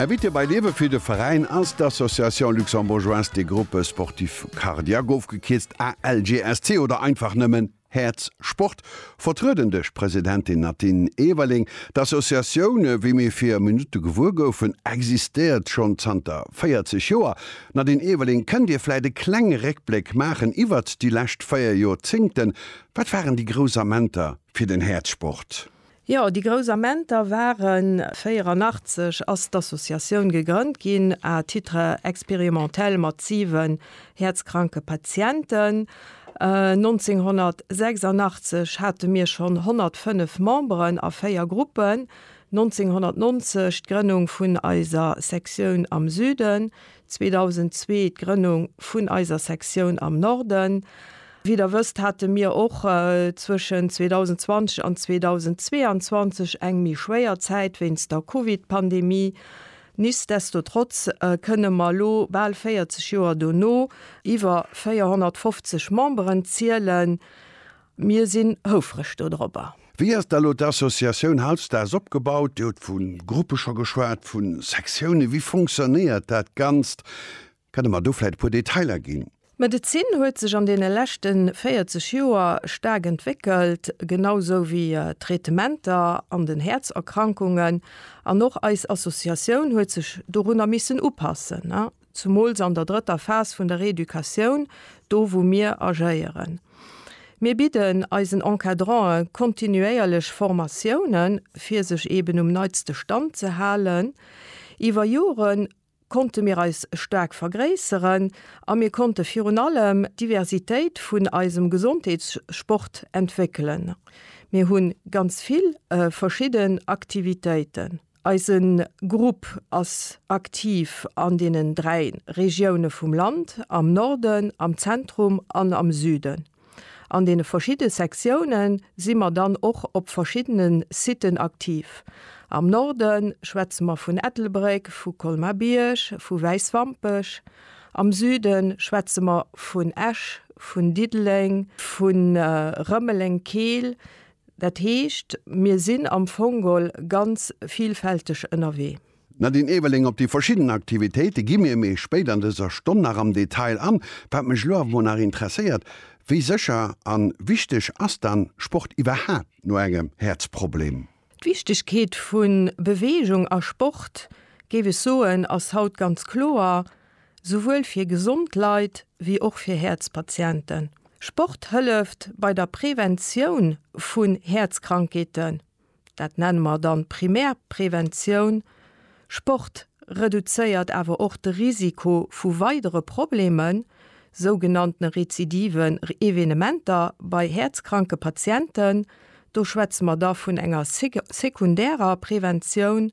Invité bei Liewe fir de Veräin ass d'Association Luxembourgeoise des Groupes Sportifs Cardiaques, ofgekierzt ALGSC oder einfach nëmmen Häerz Sport, vertrueden duerch d'Presidentin Nadine Everling. D'Associatioun, wéi mir vir Minutte gewuer goufen, existéiert schonn zanter 40 Joer. Nadine Everling, kënnt Dir vläit e klenge Réckbléck maachen iwwert déi lescht 4 Jorzéngten? Wat waren déi grouss Amenter fir den Häerzsport? Jo, déi grouss Amenter waren. 84 ass d'Associatioun gegrënnt ginn à titre expérimentel mat siwen häerzkranke Patienten. 1986 hate mir schonn 105 Memberen a véier Gruppen, 1990 d'Grënnung vun eiser Sektioun am Süden, 2002 d'Grënnung vun eiser Sektioun am Norden. Wéi der wësst, hate mir och zwëschen 2020 an 2022 eng méi schwéier Zäit wéinst der Covid-Pandemie. Nichtsdestotrotz kënne mer elo, bal 40 Joer dono, iwwer 450 Memberen zielen. Mir sinn houfreg dodropper. Wéi ass da elo d'Associatioun hautstags opgebaut? Dir hutt vu Gruppe scho geschwat, vu Sektiounen. Wéi fonctionnéiert dat Ganzt? Kann Der mer do vläit e puer Detailer ginn? D'Medezin huet sech an deene leschte 40 Joer staark entwéckelt, genau sou wéi d'Traitementer an den Häerzerkrankungen. An och eis Associatioun huet sech dorunner missen upassen. Zumools an der drëtter Phas vun der Reeducatioun, do wou mir agéieren. Mir bidden eisen Encadrantë kontinuéierlech Formatiounen, fir sech eben um neitste Stand ze halen. Iwwer Jore konnte mir eis staark vergréisseren a mir konnte virun allem d'Diversitéit vun eisem Gesondheetssport entwéckelen. Mir hu ganz vill verschidden Aktivitéiten. Eise Grupp ass aktiv an deenen dräi Regioune vum Land, am Norden, am Zentrum an am Süden. An deene verschidde Sektioune si mer dann och op verschiddene Siten aktiv. Am Norde schwätze mer vun Ettelbréck, vu Colmar-Bierg, vu Wäiswampech. Am Süde schwätze mer vun Esch, vun Diddeleng, vu Rëmeleng-Keel. Dat heescht, mir sinn am Fongol ganz vielfälteg ënnerwee. D'Nadine Eweling, Op déi verschidden Aktivitéite gi mir méi spéit an dëser Stonn nach am Detail an. Wat mech elo awer mol nach interesséiert, Wéi sécher a wichteg ass dann Sport iwwerhaapt no engem Häerzproblem? D'Wichtegkeet vu Beweegung a Sport, géif ech soen, ass haut ganz kloer. souwuel fir gesond Leit wéi och fir Häerzpatienten. Sport hëlleft bei der Preventioun vun Häerzkrankheeten, dat nenne mer dann Primärpreventioun. Sport reduzéiert awer och de Risiko vu weidere Problemen, sougenannte rezidiven Evenementer bei häerzkranke Patienten. Do schwätze mer da vun enger sekundärer Preventioun.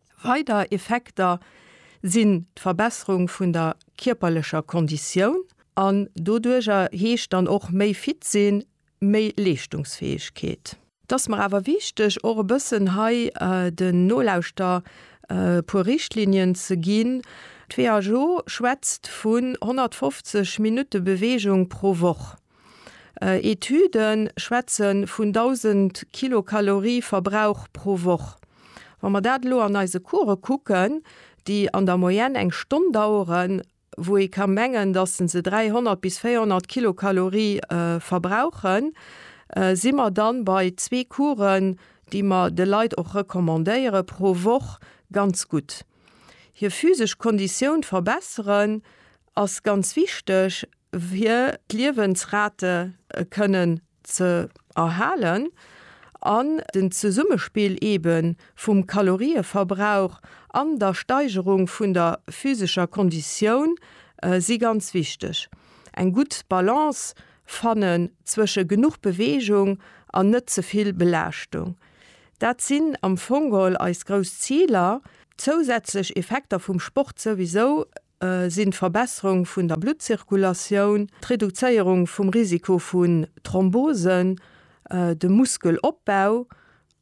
Weider Effekter sinn d'Verbesserung vun der kierperlecher Konditioun an doduerjer heescht dann och méi fit sinn, méi Leeschtungsfäegkeet. Et ass mer awer wichteg och e bëssen hei den Nolauschter e puer Richtlinien ze ginn. D'WHO schwätzt vun 150 Minutte Beweegung pro Woch. Etüde schwätze vun 1.000 Kilokalorie Verbrauch pro Woch. Wa mer dat elo an eise Course kucken, déi an der Moyenne eng Stonn daueren, wou ee ka mengen, datt se 300 bis 400 Kilokalorie verbrauchen, si mer da bei zwee Coursen, déi mer de Leit och recommandéiere pro Woch, ganz gutt hir physesch Konditioun verbesseren ass ganz wichteg fir d'Liewensrate kënnen ze erhalen an den Zesummespill eeben vum Kalorieverbrauch an der Steigerung vun der physescher Konditioun si ganz wichteg. Eng gutt Balance fannen zwësche genuch Beweegung an net ze vill Belaaschtung, dat sinn am Fong geholl eis grouss Ziler. Zousätzlech Effekter vum Sport souwisou sinn d'Verbesserung vun der Bluttzirkulatioun, d'Reduzéierung vum Risiko vun Thrombosen, de Muskelopbau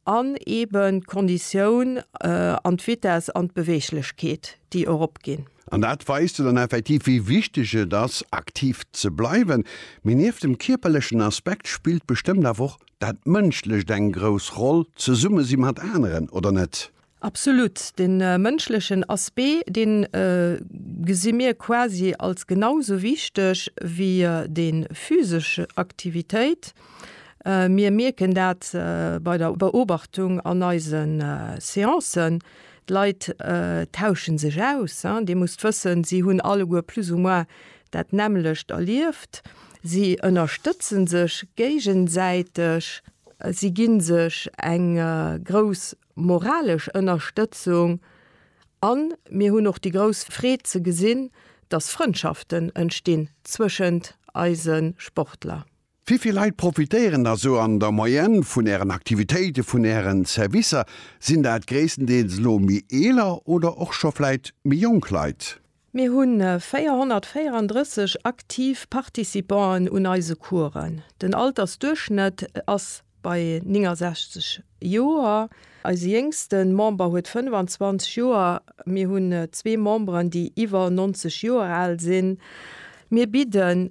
an eeben d'Konditioun an d'Vitess an d'Beweeglechkeet, déi eropginn. An dat weist jo dann effektiv, wéi wichteg et ass, aktiv ze bleiwen. Mee nieft dem kierperlechen Aspekt spillt bestëmmt awer och dat Mënschlecht eng grouss Roll, zesumme si mat aneren, oder net? Absolut. De mënschlechen Aspect, dee gesi mir quasi als genau sou wichteg wéi déi physesch Aktivitéit. Mir mierken dat bei der Beobachtung an eise Seancen, d'Leit tausche sech aus. Dir musst wëssen, si hunn alleguer plus ou moins dat nämmlecht erlieft. Si ënnerstëtze sech géigesäiteg, si gi sech eng grouss moralesch Ënnerstëtzung a mir hunn och déi grouss Freed ze gesinn, dass Frëndschaften entstinn zwëschent eise Sportler. Wivill Leit profitéieren da sou an der Moyenne vun Ären Aktivitéiten, vun Ären Servicer? Sinn dat gréisstendeels elo méi eeler oder och scho vläit méi jonk Leit? Mir hu 434 aktiv Participanten un eise Coursen. Den Altersduerchschnëtt ass bei 69 Joer. Eise jéngste Member huet 25 Joer. Mir hunn zwee Memberen, déi iwwer 90 Joer al sinn. Mir bidden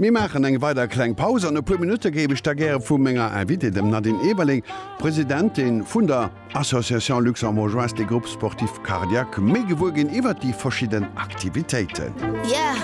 Mir maachen eng weider kleng Paus. An e puer Minutte géif ech da gäre vu menger Invitée, dem Nadine Eberling, Presidentin vun der Association Luxembourgeoise des Groupes Sportifs Cardiaques, méi gewuer ginn iwwert déi verschidden Aktivitéiten. Yeah!